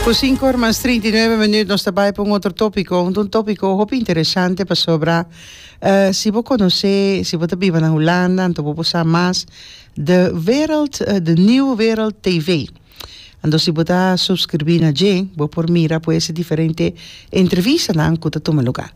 Ku sinku ora mas trinta i nuebe minüt nos ta bai pa un otro tópiko, un tópiko hopi interesante pasobra si bo konosé, si bo ta biba na Hulanda anto bo por sa mas de wereld, de nieuwe wereld TV. Anto si bo ta subskrbí na dje bo por mira pues e diferente entrevistanan ku ta tuma lugá.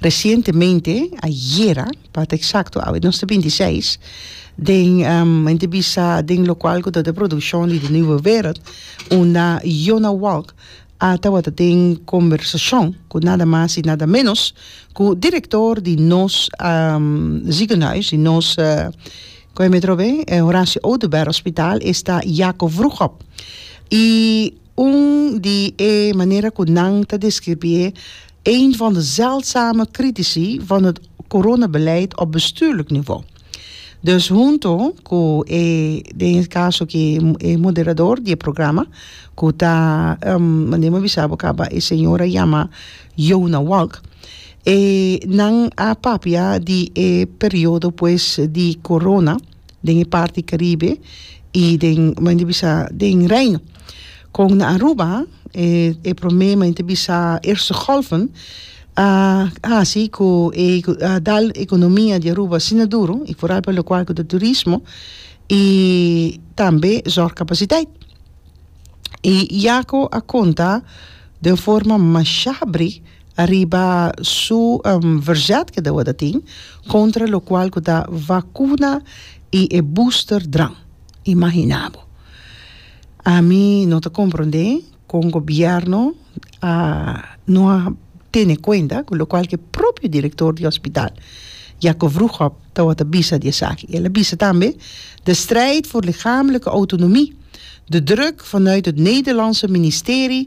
Resientemente, ayera pa ta eksakto, awe nos ta binti seis, den men ta bisa den lokual ku ta de produshon di de Nieuwe Wereld unda Yona Walk a tabata den kombersashon ku nada mas i nada menos ku direktor di nos zigenhuis, di nos Horacio Oduber Hospitaal esta Jaco Vroegop i Un di e manera ku nan ta deskribié een van de zeldzame kritici van het coronabeleid op bestuurlijk niveau. Dus hunto ku e, den e kaso aki e moderador di e programa ku ta, manera mi a bisa bo kaba e señor a yama Yona Walk, e nan a papia di e periodo pues di corona. den e parti Caribe y den como nan ta bisa den Reino con na Aruba e prome como nan ta bisa Eerste Golven a haci cu e a da economia di Aruba asina duro y foral pa locual cu ta turismo y tambe zorg capaciteit y yaco a conta den forma masha brig. ariba su verzet ke dawada tin kontra lokual ku ta vakuna i e booster dran. Imaginá bo. Ami no ta komprondé kon gobièrnu a no a tene kuenta ku lokual ku e propio direktor di hospital Jacob Vroegop tawata bisa di esaki. El a bisa tambe, De strijd voor lichamelijke autonomie, de druk vanuit het Nederlandse ministerie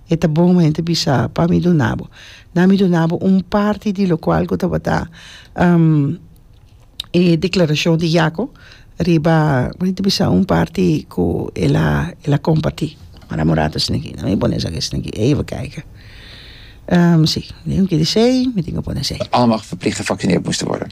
E ta bon om hende bisa pa mi duna bo. Na mi duna bo un parti di lokual ku tabata e deklarashon di Yako riba, mi hende bisa un parti ku el a el a kompartí. Mara Morato a sin aki, na mi pone esaki a sin aki, even kijke. Si, den un kere sei, mi tin ke pone sei. Almag verplicht te vaksinert moest te worde.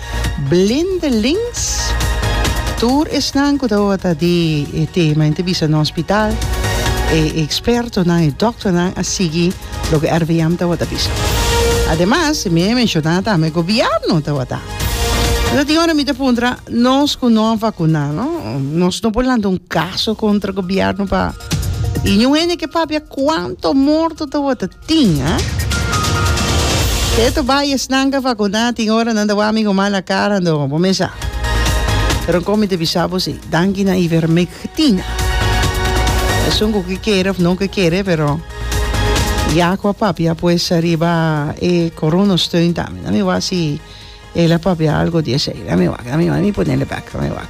Blindelings, tur esnan cu ta ota di e tema en ta bisa na hospital, e expertonan, e dokternan a sigui loke RVM ta ota bisa. Ademas, mi a menciona tambe, gobierno ta ota. Enton tin ora mi ta puntra, nos cu no a vacuna, no? Nos no por lanta un caso contra gobierno pa, y niun hende ke papia cuanto morto ta ota. tin, a. Keto bai e snanka fakuná tin ora nan ta wami ku mala kara do bo mesa. Pero kon mi ta bisa bo si, danki na Ivermec tin, a. Esun ku ke kere of no ke kere pero Yaku a papia pues ariba e Corona Steun tambe. Dami wak si el a papia algo di esei. Dami wak, dami wak, mi ponele bek, dami wak.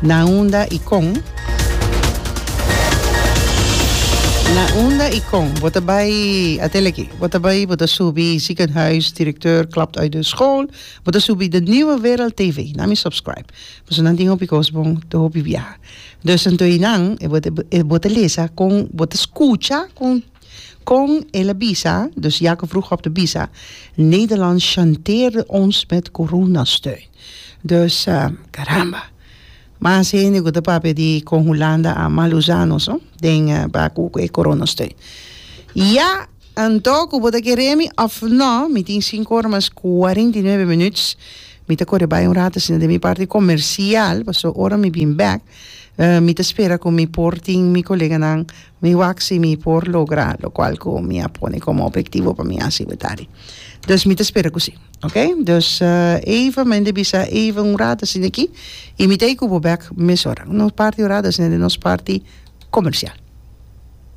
Na unda i kon? Na unda i kon? Bo ta bai, atel aki, bo ta bai, bo ta subi Ziekenhuis, Directeur klapt uit de school, bo ta subi De Nieuwe Wereld TV, na mi subscribe. Pasobra nan tin hopi kos bon, te hopi biaha. Dus anto einan e bo ta lesa kon, bo ta skucha kon. Kon el a bisa, dus Jacob vroeg op te bisa, Nederland chanteerde ons met coronasteun. Dus, caramba! Mas hende cu ta papia di con Hulanda a mal usa nos, no? Den ba cu e coronasteun. Ya! Anto cu bo ta kere mi of no? Mi tin sinku ora mas cuarenta i nuebe minuut. Mi ta core bay un rato asina den mi parti comercial, pasobra ora mi bin bek, mi ta spera cu mi por tin mi coleganan Mi wak si mi por logra lo cual cu mi a pone como obhectivo pa mi haci wetari. Dus mi ta spera cu si. Ok? Dus even, men de bisa even un rato asina aki y mi ta ey cu bo bek mesora. Nos parti un rato asina den nos parti comercial.